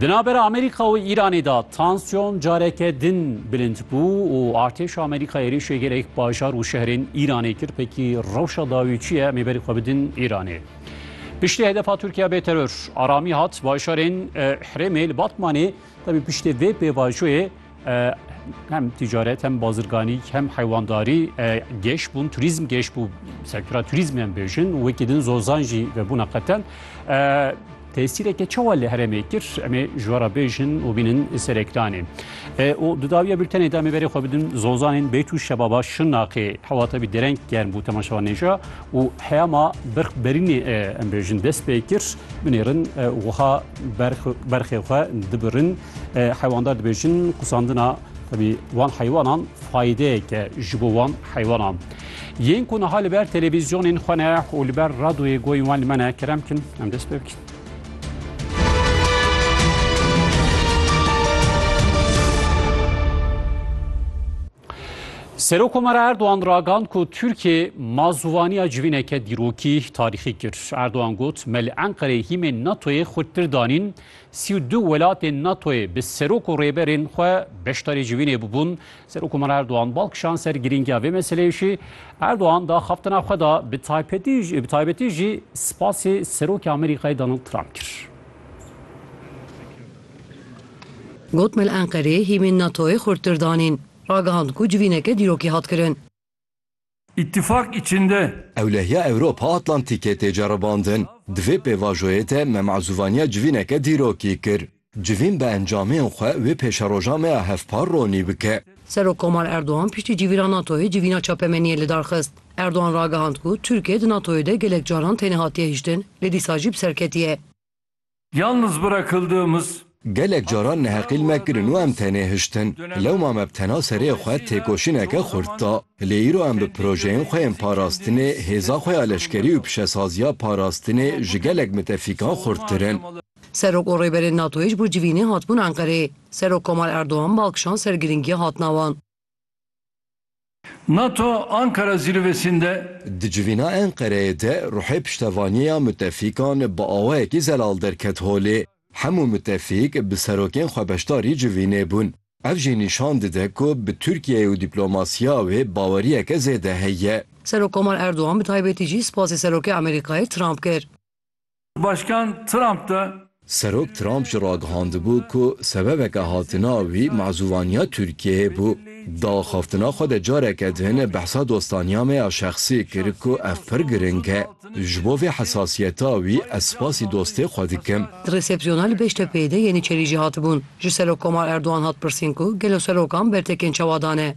Di navbera Amerîka û Îranê de tansyon careke din bilind bû û artêşa Amerîka êrîşê gelek bajar û şehrên Îranê kir pekî rewşa dawî çi ye em ê berî xwe bidin Îranê. Piştî hedefa Tirkiya bê teror aramî hat bajarên Hirêmê li Batmanê tevî piştî vê pêvajoyê hem ticaret hem bazirganî hem heywandarî geş bûn turizm geş bû sektora turizm em bêjin wekî din zozan jî vebûna qeten tesîreke çawa li herêmê kir em ê ji wara bêjin û bînin serekdanê û dudawiya bültenê de em ê berê xwe bidin zozanên bêt û şebaba şinaqê hewata bî dereng germ bû temaşewa nêja û heyama birx berînê em bêjin dest pê kir binêrin wiha berxê xwe dibirin Heywandat dibêjin qusandina tevî wan heywanan faydeyeke ji bo wan heywanan. Yên ku niha li ber televîzyonên xwe ne û li ber radoyê goyên wan li me ne kerem kin em dest pê bikin. Serokkomara Erdogan ragand ku Tirkiye ma zûvaniya civîneke dîrokî tarîxî kir. Erdogan got, Me li Enqereyê hîmên NATOyê xurttir danîn, sî û du welatên NATOyê bi serok û rêberên xwe beşdarî civînê bûbûn. Serokkomara Erdogan bal kişand ser girîngiya vê meseleyê jî. Erdogan di axaftina xwe de bi taybetî jî spasê Serokê Amerîkayê Donald Trump kir. Got me li Enqereyê hîmên NATO'yê xurttir danîn. Ragihand ku civîneke dîrokî hat kirin. Îtîfak içinde. Ewlehiya Ewropa Atlantîkê tê ceribandin. Di vê pêvajoyê de me mezûvaniya civîneke dîrokî kir. Civîn bi encamên xwe wê pêşeroja me ya hevpar ronî bike. Serokkomar Erdogan piştî civîna NATO'yê civîna çapemeniyê lidar xist. Erdogan ragihand ku Tirkiye di NATO'yê de gelek caran têne hatiye hiştin lê dîsa jî bi serketî ye. Yalnız bırakıldığımız. Gelek caran neheqîl me kirin û em tenê hiştin. Lewma me bi tena serê xwe têkoşîneke xurt da. Lê îro em bi projeyên xwe yên parastinê, hêza xwe ya leşkerî û pişesaziya parastinê ji gelek mitefîkan xurttir in. Serok û Rêberên NATOyê ji bo civînê hatibûn Enqereyê. Serok Komal Erdogan bal kişand ser girîngiya hatina wan. Nato Ankara zîrvesinde. Di civîna Enqereyê de ruhê piştevanîyeya mutefîkan bi awayekî zelal derket holê. Hemû mutefîk bi serokên xwe beşdarî civînê bûn. Ev jî nîşan dide ku bi Tirkiyeyê û dîplomasîya wê bawerîyeke zêde heye. Serok Komar Erdogan bi taybetî jî spasê Serokê Amerîkayê Trump kir. Başkan Trump de. Serok Trump jî ragihandibû ku sebebeke hatina wî mezûvaniya Tirkiyeyê bû. Di axaftina xwe de careke din behsa dostaniya me ya şexsî kir ku ev pir giring e. Ji bo vê hesasiyeta wî ez spasî dostê xwe dikim. Di resepsiyona li Bêştepeyê de Yeniçerî jî hatibûn. Ji Serokkomar Erdogan hat pirsîn ku gelo serokan bertekên çawa dane.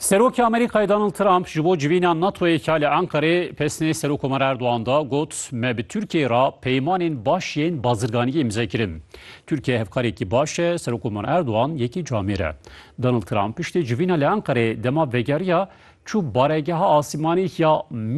Serokê Amerîkayê Donald Trump ji bo civîna NATO'yê ka li Enqerê pesnê Serokkomer Erdogan da got, Me bi Tirkiyeyê re peymanên baş yên bazirganiyê îmze kirin. Tirkiye hevkarekî baş e, Serokkomer Erdogan yekî camêr e. Donald Trump piştî civîna li Enqerê dema vegeriya çû baregeha asîmanî ya